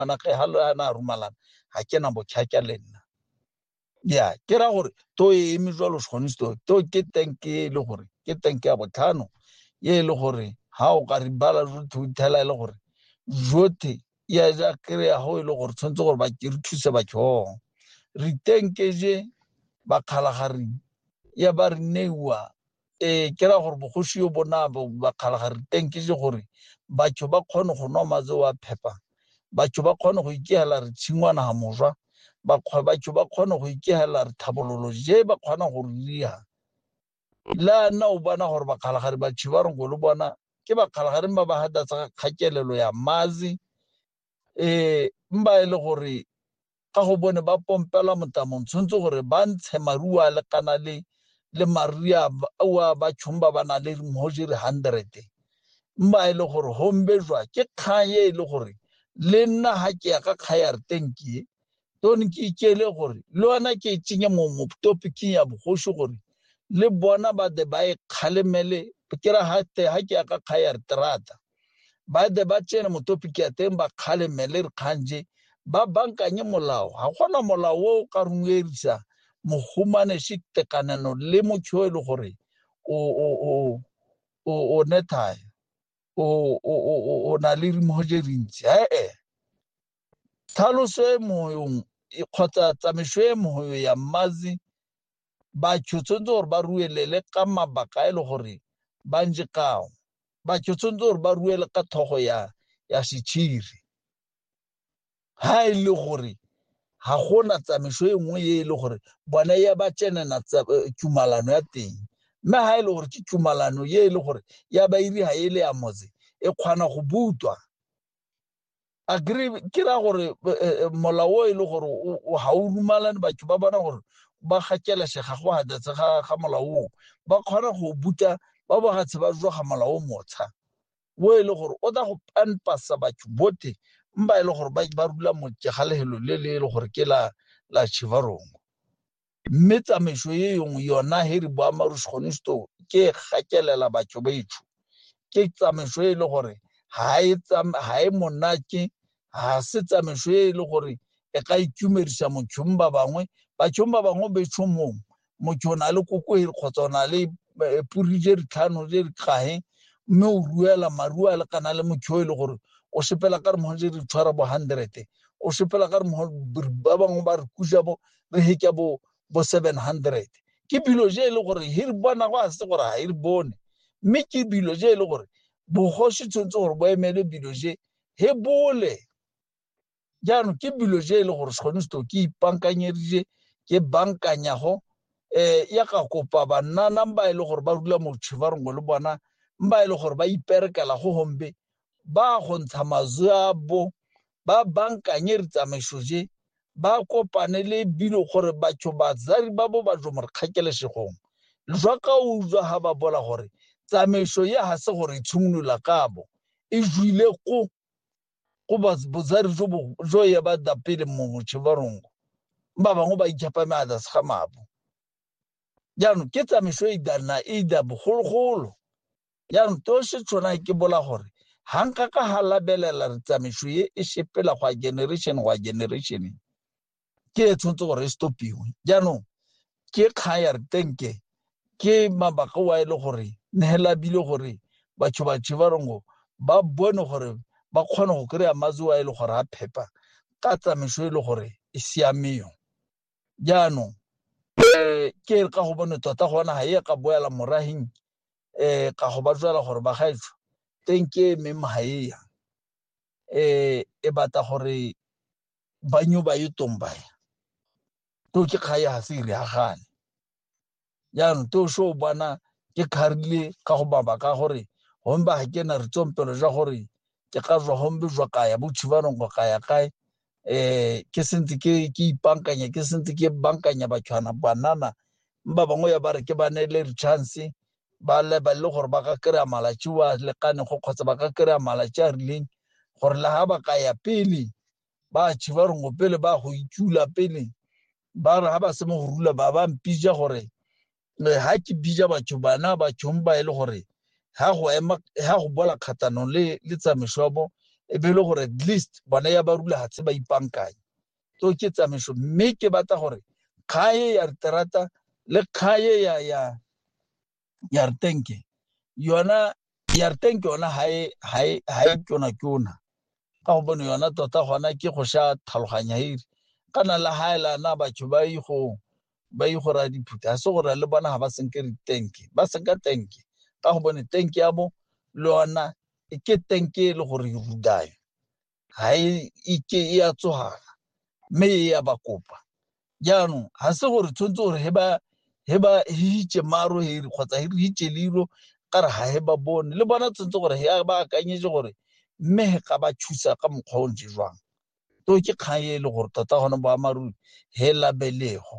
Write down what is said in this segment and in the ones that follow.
ana ge ha le ana rumalana ha ke na bokhakya le nna ya ke ra gore to e eme jwalo segonsto to ke tank e le gore ke tank ya botlhano ye e le gore ha o ka re bala jothe o thela e le gore jothe ya ja kry ya go e le gore tshwanetse gore ba ke re thuse bathong re tenkeje bakgalagare ya ba re neiwa ee ke ra gore bogosi yo bona bakgalaga re teng ke se gore batho ba kgone go nwa matse wa phepa batho ba kgone go ikegela re tshingwana ga moswa batho ba kgone go ikegela re tlhabololo je ba kgona go riya la nna o bona gore bakgalagare batho ba roko le bona ke bakgalagare ba ba gadatsa kgakelelo ya mazi e mba e le gore ka go bone ba pompelwa motamong tshwanetse gore ba ntshe maruo a lekana le le maria a ba tšhong ba ba nang le mogoje re hundred mba e le gore hombe jwa ke kgang e e le gore le nna ga ke ya ka kgayarteng ke tone ke ikele gore le ona ke e tsenye mo mo topiking ya bogosi gore le bona ba de ba e kgalemele ke ra ha te ha ke ya ka kha ya terata ba de ba tsene mo topic ya teng ba kgalemele re khanje ba bankanye molao ha gona molao o ka rungedisa mo humane se tekanano le mo tshwelo e gore o o o o o nethaya o o o o na le mo je rintsi ha eh Tlhaloso e moyong e- kgotsa tsamaiso e moyo ya mmazi batho tshwanetse gore ba ruelele ka mabaka a e le gore ba nje kao batho tshwanetse gore ba ruele ka thogo ya ya setšhiri ha e le gore ga gona tsamaiso e nngwe e e le gore bone ya ba tsenena tsa- eh, tumalano ya teng mme ha e le gore ke tumalano e e le gore ya bairi ga e le ya motse e kgona go butwa agree ke ra gore eh, eh, eh, molao o e le gore ga o dumalane batho ba bona gore ba gakelesega go hadetse ga ga molao o ba kgona go buta ba bogatse ba joga molao o motsha o e le gore o tla go panpasa batho bote mba e le gore ba ba rula motse ga lehelo le le e le gore ke la la chivarongo Mme tsamaiso e yongwe yona he re bua marusgonisto ke e gakelela batho betsho. Ke tsamaiso e le gore ha e ha e monate, ha se tsamaiso e le gore e ka itumedisa mothong ba bangwe. Bathong ba bangwe betsho mong motho o na le koko e kgotsa o na le eh, puri je ditlhano je di kahe mme o ruela maruo a lekana le motho e le gore o sepela ka re mogo je di tshwara bo hundred o sepela ka re mogo ba bangwe ba re kusa bo re hike bo bo 700 ke bilo je e le gore hi re bona go a se gore ha e re bone mme ke bilo je e le gore bogoshi tshwanetse gore bo emele bilo je he bole jaanong ke bilo je e le gore sekgone seto ke ipankanyedije ke bankanyago um ya ka kopa bannana ba e le gore ba rula motšhe ba rongwe le bona ba e le gore ba iperekela go gombe ba go ntsha mazwe a bo ba bankanye ditsamaiso je ba kopane le bilo gore batho bazari ba bo ba jo mo re kgakelesegong jwa ka utlwa ha ba bola gore tsamaiso ya ha se gore tshimolola kabo e jwile ko go bozari jo bo jo ya ba da pele mo motshe ba rongo ba bangwe ba itshapa me a da se ga mabo jaanong ke tsamaiso e da na e da bogologolo yang to se tshwana ke bola gore ha nka ka ha labelela re tsamaiso e e sepela go a generation go a generation ke e tshwanetse gore e stopiwe jaanong ke kgang ya re tenke ke mabaka wa e le gore nehela bile gore batho batho ba rongo ba bone gore ba kgone go kry-a matsi wa e le gore a phepa ka tsamaiso e le gore e siameo jaanong um ke re ka go bone tota gona ga e ka boela morageng eh ka go ba tswela gore ba gaetsho teng ke me mahaea eh e batla gore ba nyo ba e tombaya to ke kgaya ha se re agane ya no to sho bana ke kharile ka go baba ka gore hon ba ke na re tsompelo ja gore ke ka zwa hombe zwa kaya bo chibanong go kaya kae eh ke sentse ke ke ipankanya ke sentse ke bankanya batshwana banana ba bangwe ya ba re ke ba ne le chance ba le ba le gore ba ka kry-a malatsi wa lekane go kgotsa ba ka kry-a malatsi a rileng gore le ga ba ka ya pele ba tshiba rongo pele ba go itula pele ba re ga ba se mo go rula ba ba mpija gore ga ke bija batho bana bathong ba e le gore ga go ema ga go bola kgatanong le le tsamaisobo e be e le gore at least bone ya ba rula gatse ba ipankanye to ke tsamaiso mme ke batla gore kgae ya terata le kgae ya ya ya rtenke yona ya rtenke yona ha e ha e ha e tona tona ka go bone yona tota gona ke go sha tlhaloganya ere kana la ha ela na batho ba yi go ba yi go ra diphuta se gore le bona ha ba senke re tank ba senka tank ka go bone tank ya bo le yona e ke tank e le gore e rudayo ha e ke e ya tsohana mme e ya ba kopa jaanong ga se gore tshwanetse gore he ba he ba hitše maro heri kgotsa he re hitše liro ka re ga he ba bone le bona tshwanetse gore he ba akanyetse gore mme he ka ba thusa ka mokgwa o ntse jwang to ke kgang e le gore tota gone boammaaruri he labelego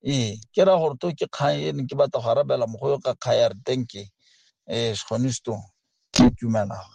ee ke ra gore to ke kgang e ne ke batla go arabela mogo yo ka kgang ya re thank you um eh, sekgone stone ke tumelago